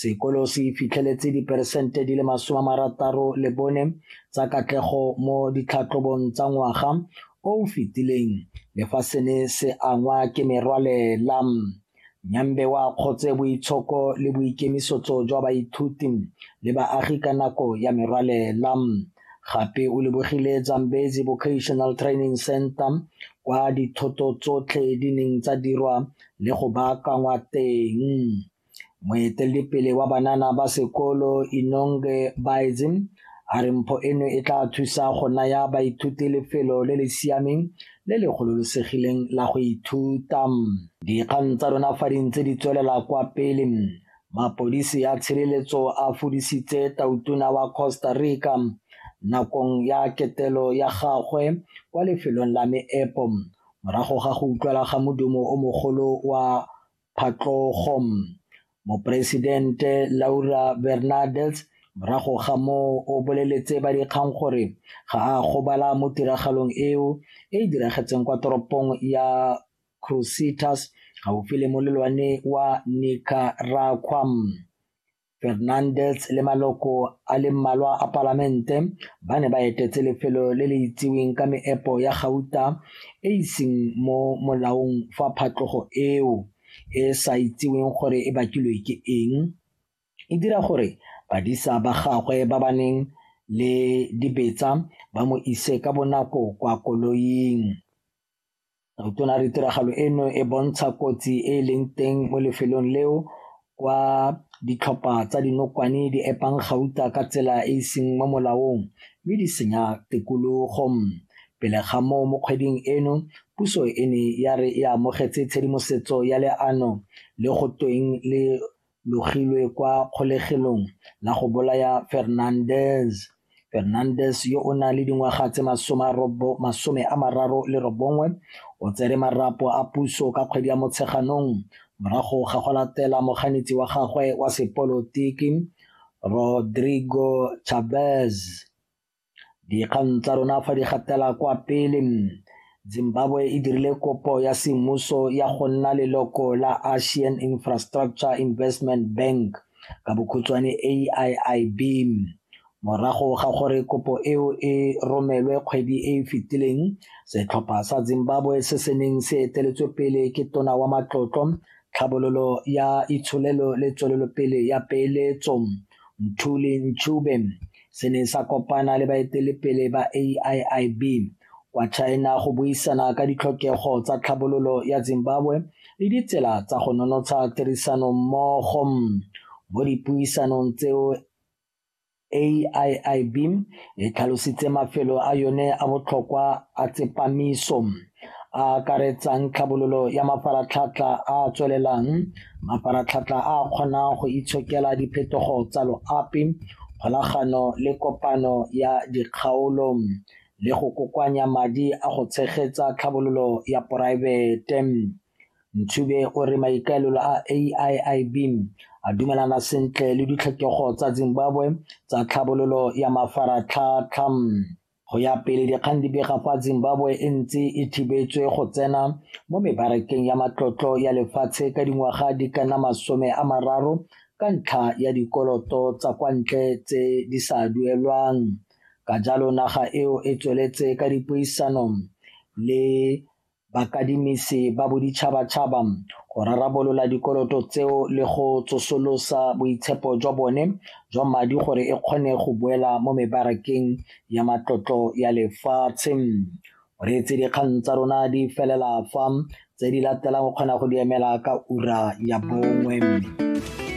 Sekolo se fitlheletse diperesente di le masome a marataro le bone tsa katlego mo ditlhatlhobong tsa ngwaga o o fetileng le fa se ne se angwa ke merwalela. Nyambe wa kgotse boitshoko le boikemisetso jwa baithuti le baagi ka nako ya merwalela. Gape o lebogile Zambezi Vocational Training Center kwa dithoto tsotlhe di neng tsa dirwa le go baakangwa teng. Moeteledipele wa banana ba sekolo Inonge Baedzi a re mpho eno e tla thusa go naya baithuti lefelo le le siameng le le gololosegileng la go ithuta. Dikgang tsa rona fa di ntse di tswelela kwa pele, mapodisi a tshireletso a fudisitse tautona wa Costa Rica nakong ya ketelo ya gagwe kwa lefelong la meepo morago ga go utlwala ga modumo o mogolo wa phatlogong. Moporesidente Laura Bernardes morago ga moo o boleletse ba dikgang gore ga a gobala mo tiragalong eo e e diragetseng kwa toropong ya Crucitas gaufi le molelwane wa Nicaragua. Fernandez le maloko a le mmalwa a palamente ba ne ba etetse lefelo le le itsiweng ka meepo ya gauta e iseng mo molaong fa phatlogo eo e sa itsiweng gore e bakilwe ke eng e dira gore badisa ba gagwe ba ba neng le dibetsa ba mo ise ka bonako kwa koloing. Re tona re tiragalo eno e bontsha kotsi e e leng teng mo lefelong leo kwa ditlhopha tsa dinokwane di epang gauta ka tsela e e seng mo molaong mme di senya tikologo. Pele ga moo mo kgweding eno puso e ne ya re e amogetse tshedimosetso ya leano le go tweng le logilwe kwa kgolegelong la go bolaya Fernandez. Fernandez yo o nang le dingwaga tse masome a mararo le robongwe o tsere marapo a puso ka kgwedi ya Motsheganong morago ga go latela moganetsi wa gagwe wa sepolotiki Rodrigo Chavez Dikgang tsa rona fa di gatela kwa pele, Zimbabwe e dirile kopo ya semmuso ya go nna leloko la Asian Infrastructure Investment Bank ka bokhutshwane AIIB morago ga gore kopo eo e romelwe kgwedi e e fetileng setlhopha sa Zimbabwe se se neng se eteletswe pele ke tona wa matlotlo tlhabololo ya itsholelo le tswelelopele ya peeletso Mthuli Ncube se ne sa kopana le baetelepele ba AIIB kwa China go buisana ka ditlhokego tsa tlhabololo ya Zimbabwe le ditsela tsa go nonotsha tirisano mmogo mo dipuisanong tseo AIIB e tlhalositse mafelo a yone a botlhokwa a tsepamiso a akaretsang tlhabololo ya mafaratlhatlha a a tswelelang mafaratlhatlha a a kgonang go itshokela diphetogo tsa loapi kgolagano le kopano ya dikgaolo le go kokoanya madi a go tshegetsa tlhabololo ya poraefete ntshube o re maikaelelo a aiib a dumelana sentle le ditlhokego tsa zimbabwe tsa tlhabololo ya mafaratlhatlha Go ya pele dikgang di bega fa Zimbabwe e ntse e thibetswe go tsena mo mebarakeng ya matlotlo ya lefatshe ka dingwaga di ka nna masome a mararo ka ntlha ya dikoloto tsa kwa ntle tse di sa duelwang. Ka jalo naga eo e tsweletse ka dipuisano le Bakadimisi ba boditšhabatšhaba go rarabolola dikoloto tseo le go tsosolosa boitshepo jwa bone jwa madi gore e kgone go boela mo mebarakeng ya matlotlo ya lefatshe. O reetse dikgang tsa rona di felela fa, tse di latelang o kgona go di emela ka ura ya bongwe.